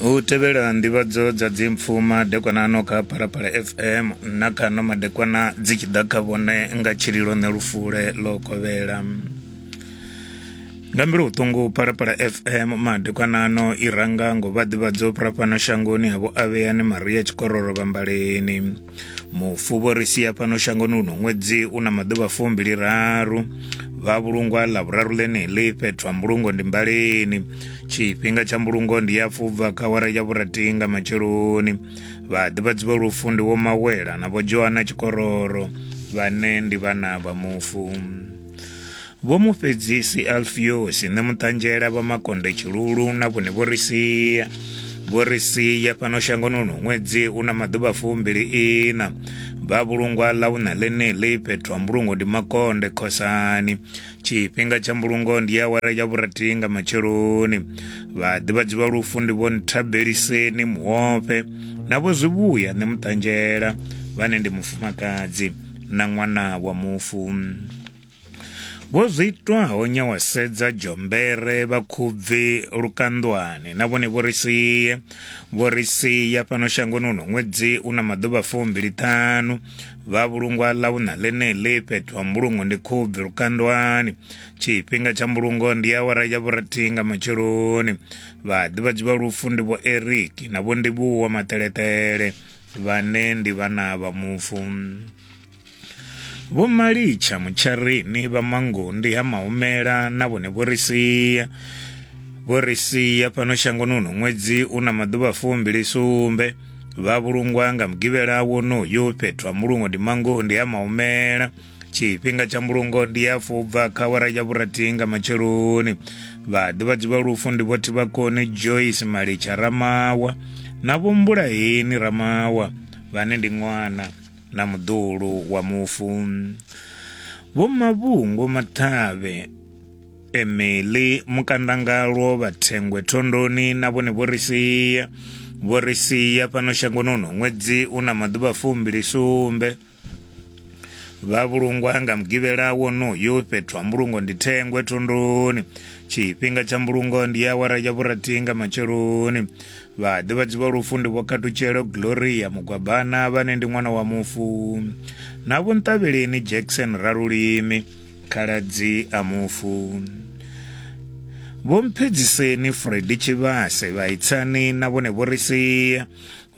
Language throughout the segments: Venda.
u tevhela nḓivhadzo dza dzimpfu madekwana ano kha phalaphala fm na kha no madekwana dzi tshi ḓa kha vhone nga tshililo ne lufule ḽo kovhela nga mbilu vhuṱungu phalaphala fm madekwana ano i ranga ngo vha ḓivhadzo phura fhano shangoni ha vho avheyani maria tshikororo vhambaleni mufuvho ri sia fhano shangoni uno ṅwedzi u na maḓuvha fumbili raru vha vhulungwa ḽa vhuraru ḽeneḽi fhethu ha mbulungo ndi mbaleni tshifhinga tsha mbulungo ndi ya fubva kha wara ya vhuratii nga matsheloni vha ḓivhadzi vha lufu ndi wo mawela na vho joana tshikororo vhane ndi vhana vha mufu Vho Mufhedzisi Alfiosi Ṋemuṱanzhela vha Makonde Tshilulu na vhone vho ri sia vho ri sia fhano shangoni uno ṅwedzi u na maḓuvha fumbili ina vha vhulungwa ḽa u na ḽeneḽi fhethu ha mbulungo ndi makonde khosani tshifhinga tsha mbulungo ndi awara ya vhurathi nga matsheloni vhaḓivhadzi vha lufu ndi vho nthabeliseni muhofhe na vho zwivhuya ṋe muṱanzhela vhane ndi mufumakadzi na ṅwana wa mufu Vho zwi itwaho nyawasedza dzhombere vha khubvi lukanḓwani na vhone vho ri sie vho ri sia fhano shangoni uno ṅwedzi u na maḓuvha fumbili ṱhanu vha vhulungwa ḽa vhuṋa ḽeneḽi fhethu ha mbulungo ndi khubvi lukandwani tshifhinga tsha mbulungo ndi awara ya vhurathihi nga matsheloni vhaḓivhadzi vha lufu ndi vho eric na vho ndivhuwa maṱeleṱele vhane ndi vhana vha mufu Vho Malicha Mutsharini vha Mangundi ha Mahumela na vhone vho ri sia vho ri sia fhano shangoni uno ṅwedzi u na maḓuvha fumbili sumbe vha vhulungwa nga mugivhela wonoyo fhethu ha mulungo ndi Mangundi ha Mahumela tshifhinga tsha mbulungo ndi ya fubva kha wara ya vhurathi nga matsheloni vhaḓivhadzi vha lufu ndi vhothi vha koni joyce malitsha ramawa na vho mbulaheni ramawa vhane ndi ṅwana na muḓulu wa mufu vho mavhungo mathavhe emeli mukandangalwo vhathengwe thondoni na vhone vho ri sia vho ri sia fhano shangoni uno ṅwedzi u na maḓuvha fumbili sumbe vha vhulungwa nga mugivhela wonoyo fhethu ha mbulungo ndi thengwe thondoni tshifhinga tsha mbulungo ndi awara ya vhurathi nga matsheloni Vhaḓivhadzi vha lufu ndi Vho Khatutshelo Gloria Mugwabana vhane ndi ṅwana wa mufu na Vho Nṱavheleni Jackson Ralulimi khaladzi a mufu. Vho Mphedziseni Freddy Tshivhase vha Itsani na vhone vho ri sia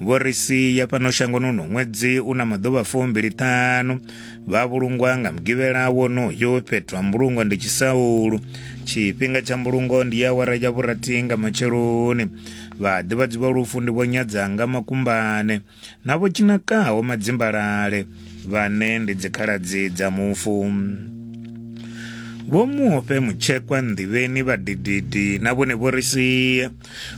vho ri sia fhano shangoni uno ṅwedzi u na maḓuvha fumbili ṱhanu vha vhulungwa nga mugivhela wonoyo fhethu ha mbulungo ndi tshisaulu tshifhinga tsha mbulungo ndi ya awara ya vhurathi nga matsheloni vhaḓivhadzi vha lufu ndi vho nyadzanga makumbane na vho tshinakaho madzimbalale vhane ndi dzikhaladzi dza mufu vho muofhe mutshekwa nḓivheni vhadididi na vhone vho ri sia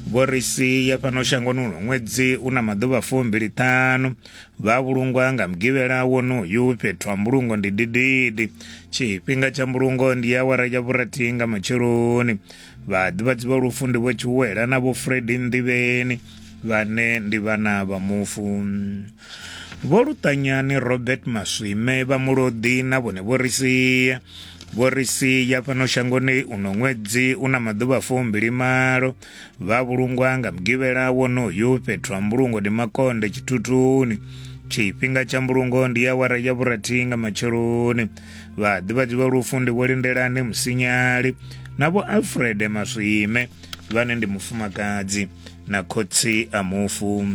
vho ri sia fhano shangoni uno ṅwedzi u na maḓuvha fumbili ṱhanu Vha vhulungwa nga mugivhela wonoyu fhethu ha mbulungo ndi dididi. Tshifhinga tsha mbulungo ndi awara ya vhurathi nga matsheloni. Vhaḓivhadzi vha lufu ndi Vho Tshiwela na Vho Fredi Nḓivheni vhane ndi vhana vha mufu. Vho Luṱanyani Robert Maswime vha Mulodi na vhone vho ri sia vho ri sia fhano shangoni uno ṅwedzi una maḓuvha fumbili malo Vha vhulungwa nga mugivhela wonoyu fhethu ha mbulungo ndi makonde tshithutuni tshifhinga tsha mbulungo ndi awara ya vhurathi nga matsheloni vhaḓivhadzi vha lufu ndi vho lindelani musinyali na vho alfred maswime vhane ndi mufumakadzi na khotsi a mufu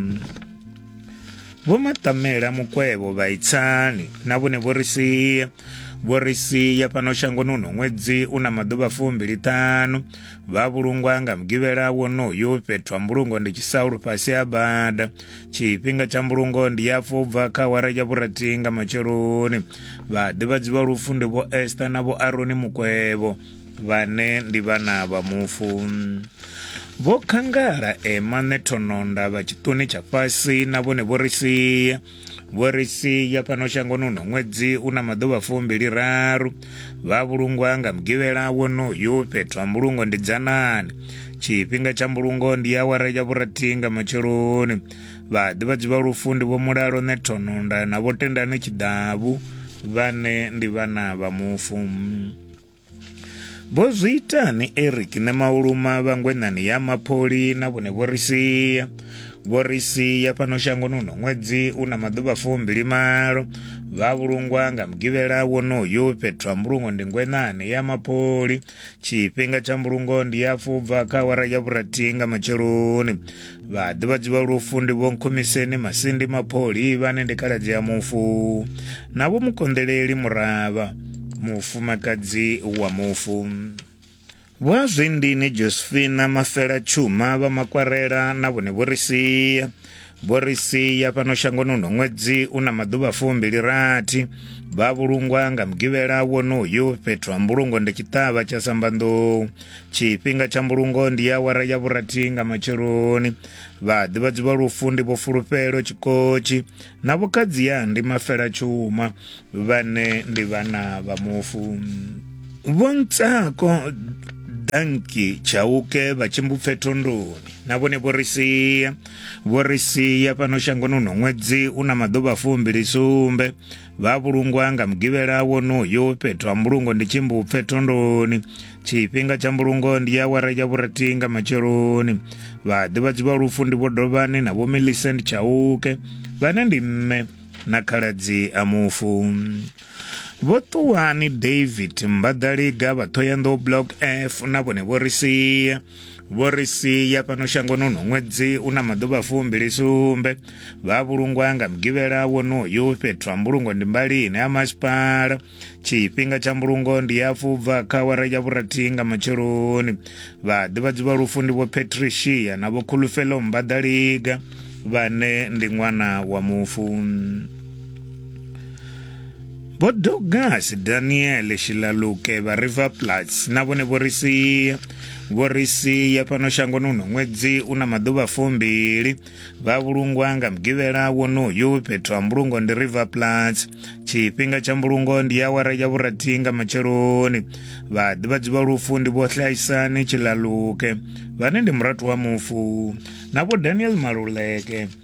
vho maṱamela mukwevho vhaitsani na vhone vho ri sia vho ri sia fhano shangoni uno ṅwedzi u na maḓuvha fumbili ṱanu vha vhulungwa nga mugivhela wonoyu fhethu ha mbulungo ndi tshisaulu fhasi ha bada tshifhinga tsha mbulungo ndi ya fubva kha awara ya vhurathi nga matsheloni vhaḓivhadzi vha lufu ndi vho ester na vho aroni mukwevho vhane ndi vhana vha mufu vho khangala ema nethononda vha tshiṱuni tsha fhasi na vhone vho ri sia vho ri sia fhano shangoni uno ṅwedzi u na maḓuvha fumbili raru vha vhulungwa nga mugivhela wonoyu fhethu ha mbulungo ndi dzanani tshifhinga tsha mbulungo ndi awara ya vhurathi nga matsheloni vhaḓivhadzi vha lufu ndi vho mulalo nethononda na vho tendani tshiḓavu vhane ndi vhana vha mufu vho zwi itani eric ne mauluma vhangwenani ya mapholi na vhone vho ri sia vho ri sia fhano shangoni uno ṅwedzi u na maḓuvha fumbili malo vha vhulungwa nga mugivhela wonoyo fhethu ha mbulungo ndi ngwenani ya mapholi tshifhinga tsha mbulungo ndi ya fubva kha awara ya vhurathi nga matsheloni vhaḓivhadzi vha lufu ndi vhonkhumiseni masindi mapholi vhane ndi khaladzi ya mufu na vho mukonḓeleli muravha mufumakadzi wa mufu vha zwindini josephina mafela tshuma vha makwarela na vhone vho ri sia vho ri sia fhano shangoni uno ṅwedzi u na maḓuvha fumbili rathi vha vhulungwa nga mugivhela wonoyu fhethu ha mbulungo ndi tshiṱavha tsha sambanḓou tshifhinga tsha mbulungo ndi awara ya vhurathi nga matsheloni vhaḓivhadzi vha lufu ndi vho fulufhelo tshikotshi na vhokhadziya ndi mafela tshuma vhane ndi vhana vha mufu vhontsako danki tshauke vha tshimbupfe thondoni na vhone vho ri sia vho ri sia fhano shangoni uno ṅwedzi u na maḓuvha fumbilisumbe vha vhulungwa nga mugivhela wonoyo fhethu ha mbulungo ndi tshimbupfe thondoni tshifhinga tsha mbulungo ndi ya awara ya vhurathi nga matsheloni vhaḓivhadzi vha lufu ndi vho dovhani na vho millicent tshauke vhane ndi mme na khaladzi a mufu vho ṱuwani david mbaḓaliga vha thoyandou block f na vhone vho ri sia vho ri sia fhano shangoni uno ṅwedzi u na maḓuvha fumbili sumbe vha vhulungwa nga mugivhela wonoyu fhethu ha mbulungo ndi mbalini ha masipala tshifhinga tsha mbulungo ndi ya fubva kha wara ya vhurathi nga matsheloni vha ḓivhadzi vha lufu ndi vho patricia na vho khulufelo mbadaliga vhane ndi ṅwana wa mufu Vho Douglas Daniel Shilaluke vha River Plats na vhone vho ri sia vho ri sia fhano shangoni uno ṅwedzi u na maḓuvha fumbili vha vhulungwa nga mugivhela wonoyu fhethu ha mbulungo ndi River Plats tshifhinga tsha mbulungo ndi awara ya vhurathi nga matsheloni vha ḓivhadzi vha lufu ndi vho Hlaisani Tshilaluke vhane ndi murathu wa mufu na vho Daniel Maluleke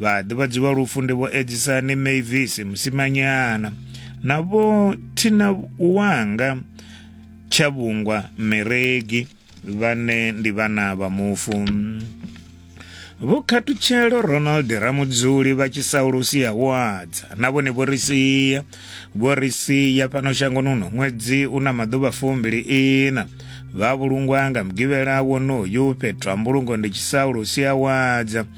vhaḓivhadzi vha lufu ndi vho edzisani mavis musimanyana na vho thina wanga tshavhungwa meregi vhane ndi vhana vha mufu vho khathutshelo ronald ramudzuli vha tshisaulusi ya wadza na vhone vho ri sia vho ri sia fhano shangoni uno ṅwedzi u na maḓuvha fumbili ina vha vhulungwa nga mugivhela wonoyu fhethu ha mbulungo ndi tshisaulusi ya wadza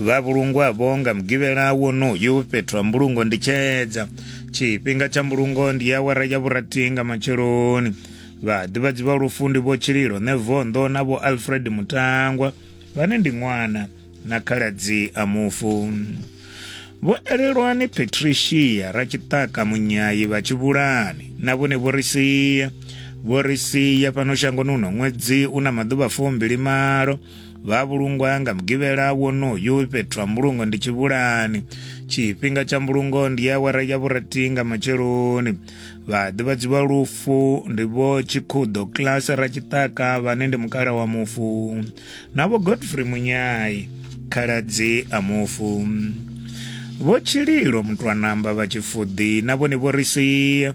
vha vhulungwavho nga mugivhela wonoyu fhethu ha mbulungo ndi tshedza tshifhinga tsha mbulungo ndi awara ya vhurathi nga matsheloni vhaḓivhadzi vha lufu ndi vho tshililo nevondo na vho alfred mutangwa vhane ndi ṅwana na khaladzi a mufu vho elelwani patricia ratshiṱaka munyayi vha tshivhulani na vhone vho ri sia vho ri sia fhano shangoni uno ṅwedzi u na maḓuvha fumbili malo vha vhulungwa nga mugivhela wonoyu fhethu ha mbulungo ndi tshivhulani tshifhinga tsha mbulungo ndi awara ya vhurathi nga matsheloni vhaḓivhadzi vha lufu ndi vho tshikhuḓo class ra tshiṱaka vhane ndi mukala wa mufu na vho godfrey munyai khaladzi a mufu vho tshililo mutwanamba vha tshifuḓi na vhone vho ri sia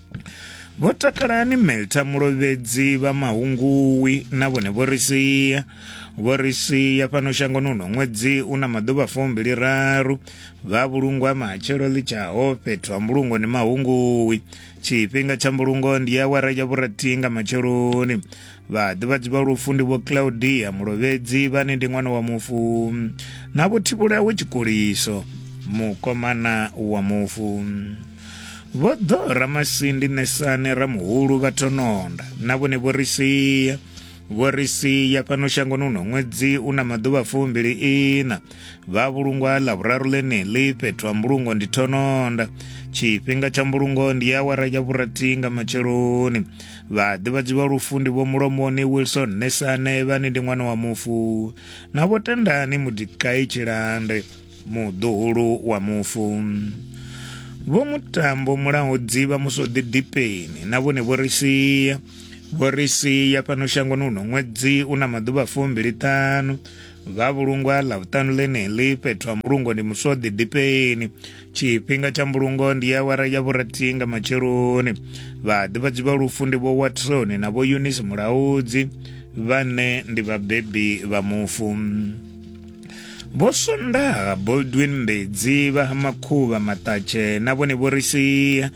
Vho Takalani Melta Mulovhedzi vha Mahunguwi na vhone vho ri sia vho ri sia fhano shangoni uno ṅwedzi u na maḓuvha fumbili raru vha vhulungwa matshelo ḽi tshaho fhethu ha mbulungo ni Mahunguwi tshifhinga tsha mbulungo ndi ya awara ya vhurathi nga matsheloni vhaḓivhadzi vha lufu ndi vho Claudia Mulovhedzi vhane ndi ṅwana wa mufu na vho Thivhulawe Tshikuliso mukomana wa mufu vho ḓo ramasindi ṋesani ramuhulu vha thononda na vhone vho ri sia vho ri sia fhano shangoni uno ṅwedzi u na maḓuvha fumbili ina vha vhulungwa ḽa vhuraru ḽeneḽi fhethu ha mbulungo ndi thononda tshifhinga tsha mbulungo ndi ya awara ya vhurathi nga matsheloni vhaḓivhadzi vha lufu ndi vho mulomoni wilson nesane vhane ndi ṅwana wa mufu na vho tendani mudikai tshilande muḓuhulu wa mufu vho mutambo mulaho dzivha muso ḓidipeni na vhone vho ri sia vho ri sia fhano shangoni uno ṅwedzi u na maḓuvha fumbili ṱanu vha vhulungwa ḽa vhuṱanu ḽeneḽi fhethu ha mbulungo ndi muswa ḓidipeni tshifhinga tsha mbulungo ndi ya wara ya vhurathi nga matsheloni vhaḓivhadzi vha lufu ndi vho watson na vho eunice mulaudzi vhane ndi vhabebi vha mufu Vho Sondaha Boldwin Mbedzi vha Makhuvha Maṱatshe na vhone vho ri sia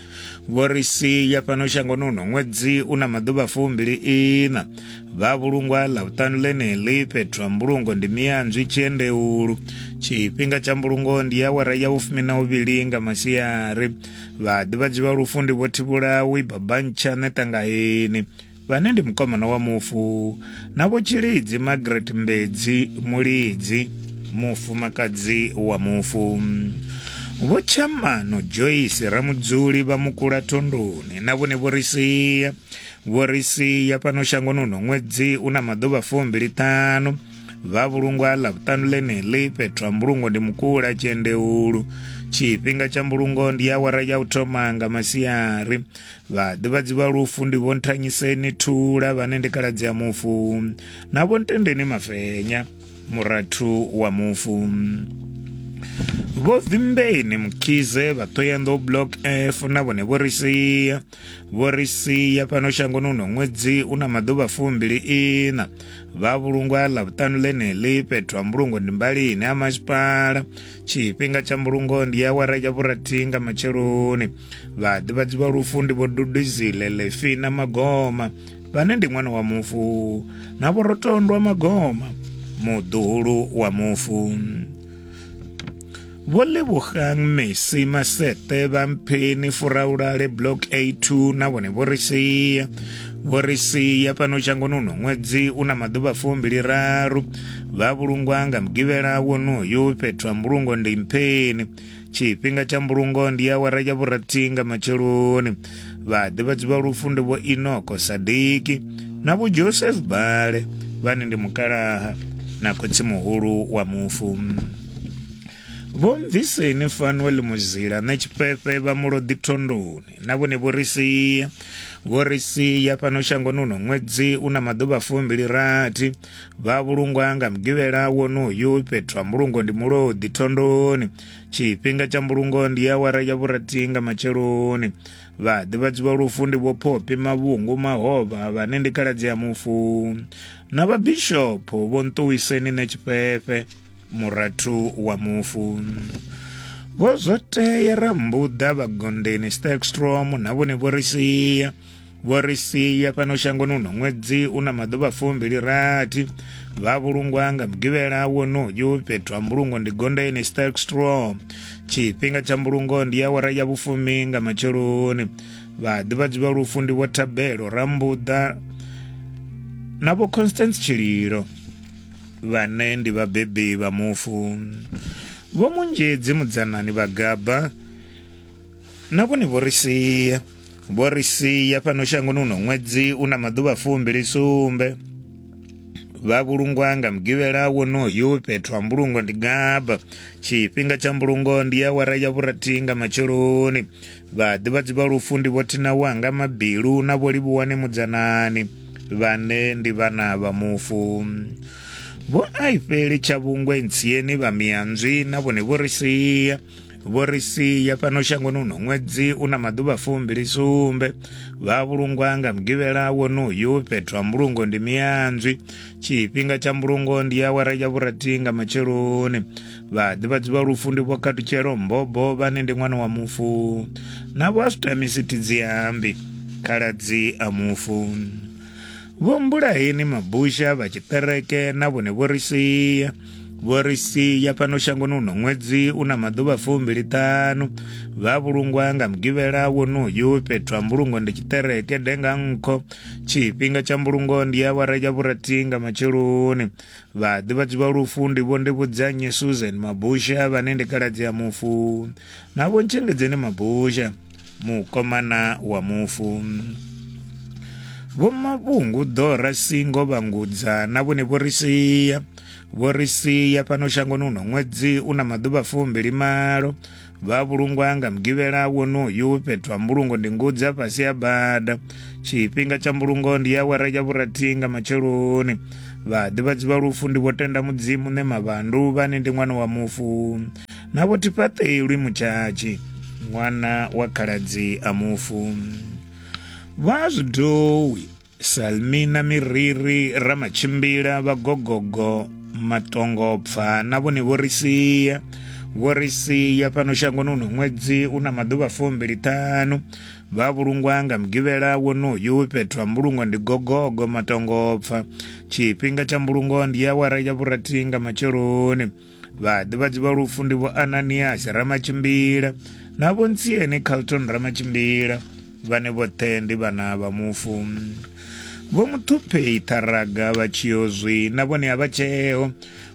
vho ri sia fhano shangoni uno ṅwedzi u na maḓuvha fumbili ina vha vhulungwa ḽa vhuṱanu ḽeneḽi fhethu ha mbulungo ndi miyanzwi tshiendeulu tshifhinga tsha mbulungo ndi awara ya vhufumi na uvhili nga masiari vhaḓivhadzi vha lufu ndi vho thivhulawi babantshane ṱangaheni vhane ndi mukomana wa mufu na vho Tshilidzi Margaret Mbedzi Mulidzi mufumakadzi wa mufu vho Tshamano Joyce Ramudzuli vha Mukula Thondoni na vhone vho ri sia vho ri sia fhano shangoni uno ṅwedzi u na maḓuvha fumbili ṱhanu vha vhulungwa ḽa vhuṱanu ḽeneḽi fhethu ha mbulungo ndi mukula tshiendeulu tshifhinga tsha mbulungo ndi awara ya u thoma nga masiari vhaḓivhadzi vha lufu ndi vho nthanyiseni thula vhane ndi kaladzi ya mufu na vho ntendeni mafenya murathu wa mufu vho vimbeni mukhize vhaṱoyanḓou block f na vhone vho ri sia vho ri sia fhano shangoni uno ṅwedzi u na maḓuvha fumbili ina vha vhulungwa ḽa vhuṱanu ḽeneḽi fhethu ha mbulungo ndi mbalini ha masipala tshifhinga tsha mbulungo ndi awara ya vhurathi nga matsheloni vhaḓivhadzi vha lufu ndi vho duduzile lefi na magoma vhane ndi ṅwana wa mufu na vhorotondwa magoma muḓuhulu wa mufu vho lebogang mesi masete vha mpheni furaulale block a2 na vhone vho ri sia vho ri sia fhano shangoni uno ṅwedzi u na maḓuvha fumbili raru vha vhulungwa nga mugivhela wonoyu fhethu ha mbulungo ndi mpheni tshifhinga tsha mbulungo ndi awara ya vhurathi nga matsheloni vhaḓivhadzi vha lufu ndi vho inoko sadiki na vho joseph bale vhane ndi mukalaha na khotsi muhulu wa mufu vho mviseni fanuel muzila na tshifhefhe vha muloḓi thondoni na vhone vho ri sia vho ri sia fhano shangoni uno ṅwedzi u na maḓuvha fumbili rathi vha vhulungwa nga mugivhela wonoyu fhethu ha mbulungo ndi mulodi thondoni tshifhinga tsha mbulungo ndi awara ya vhurathi nga matsheloni vhaḓivhadzi vha lufu ndi vhophophi mavhungu mahovha vhane ndi khaladzi ya mufu na vhabishopho vho nṱuwiseni ne tshifhefhe murathu wa mufu vho zwo tea rambuḓa vhagondeni stakstrom na vhone vho ri sia vho ri sia fhano shangoni uno ṅwedzi u na maḓuvha fumbili rathi vha vhulungwa nga mugivhela wonoyu fhethu ha mbulungo ndi gondeni stark straw tshifhinga tsha mbulungo ndi awara ya vhufumi nga matsheloni vhaḓivhadzi vha lufu ndi vho thabelo rambuḓa na vho constance tshililo vhane ndi vhabebi vha mufu vho munzhedzi mudzanani vhagaba na vhone vho ri sia vho ri sia fhano shangoni uno ṅwedzi u na maḓuvha fumbili sumbe vha vhulungwa nga mugivhela wonoyu fhethu ha mbulungo ndi gaba tshifhinga tsha mbulungo ndi ya wara ya vhurathi nga matsheloni vhaḓivhadzi vha lufu ndi vhothina wanga mabilu na vho livhuwane mudzanani vhane ndi vhana vha mufu vho aifheli tshavhungwe ntsieni vha mianzwi na vhone vho ri sia vho ri sia fhano shangoni uno ṅwedzi u na maḓuvha fumbili sumbe vha vhulungwa nga mugivhela wonoyu fhethu ha mbulungo ndi miyanzwi tshifhinga tsha mbulungo ndi awara ya vhurathi nga matsheloni vhaḓivhadzi vha lufu ndi vho khatutshelo mbobo vhane ndi ṅwana wa mufu na vho asutamisi tidziambi khaladzi a mufu vho mbulaheni mabusha vha tshiṱereke na vhone vho ri sia vho ri sia fhano shangoni uno ṅwedzi u na maḓuvha fumbiliṱanu vha vhulungwa nga mugivhela wonoyu fhethu ha mbulungo ndi tshiṱereke denga nkho tshifhinga tsha mbulungo ndi ya awara ya vhurathi nga matsheloni vhaḓivhadzi vha lufu ndi vho ndi vhudzanye susan mabusha vhane ndi khaladzi ya mufu na vho ntshengedzeni mabusha mukomana wa mufu vhomavhungu ḓora singo vhangudza na vhone vho ri sia vho ri sia fhano shangoni uno ṅwedzi u na maḓuvha fumbili malo vha vhulungwa nga mugivhela wonoyu fhethu ha mbulungo ndi ngudzi a fhasi ya bada tshifhinga tsha mbulungo ndi ya awara ya vhurathi nga matsheloni vhaḓivhadzi vha lufu ndi vho tenda mudzimu ne mavandu vhane ndi ṅwana wa mufu na vho tifhaṱelwi mutshatshi ṅwana wa khaladzi a mufu vha zwidowi salmina miriri ramatshimbila vhagogogo matongopfa na vhone vho ri sia vho ri sia fhano shangoni uno ṅwedzi u na maḓuvha fumbili ṱhanu vha vhulungwa nga mugivhela wonoyu fhethu ha mbulungo ndi gogogo matongopfa tshifhinga tsha mbulungo ndi awara ya vhurathi nga matsheloni vhaḓivhadzi vha lufu ndi vho ananiasi ramatshimbila na vho ntsiene carlton ramatshimbila vhane vhoṱhe ndi vhana vha mufu vho muthupheyi ṱharaga vha tshiyozwi na vhone a vha tsheo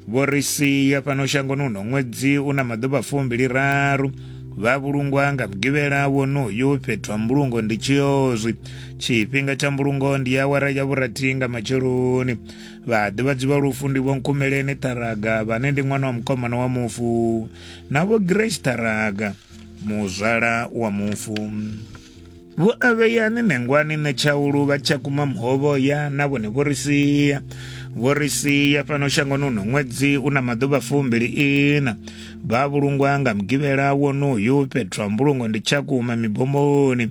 vho ri sia fhano shangoni uno ṅwedzi u na maḓuvha fumbili raru vha vhulungwa nga mugivhela wonoyo fhethu ha mbulungo ndi tshiozwi tshifhinga tsha mbulungo ndi awara ya vhurathi nga matsheloni Vhaḓivhadzi vha lufu ndi Vho Nkhumeleni Ṱharaga vhane ndi ṅwana wa mukomana wa mufu na Vho Grace Ṱharaga muzwala wa mufu. Vho Avheyani Nengwani Netshaulu vha Tshakhuma Muhovhoya na vhone vho ri sia vho ri sia fhano shangoni uno ṅwedzi u na maḓuvha fumbili ina vha vhulungwa nga mugivhela wonoyu fhethu ha mbulungo ndi Tshakhuma mibomoni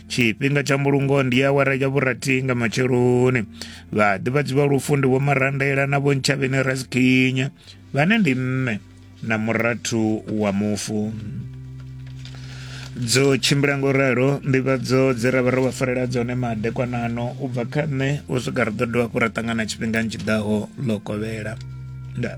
tshifhinga tsha mbulungo ndi awara ya vhurathi nga matsheloni vhaḓivhadzi vha lufu ndi vho marandela na vho ntshavheni rasikinya vhane ndi mme na murathu wa mufu dzo tshimbila ngo ralo nḓivhadzo dze ra vha ro vha farela dzone madekwanano u bva kha nṋe u swika ri ḓo dovha hafhu ra ṱangana tshifhingani tshi ḓaho ḽo kovhela ndaa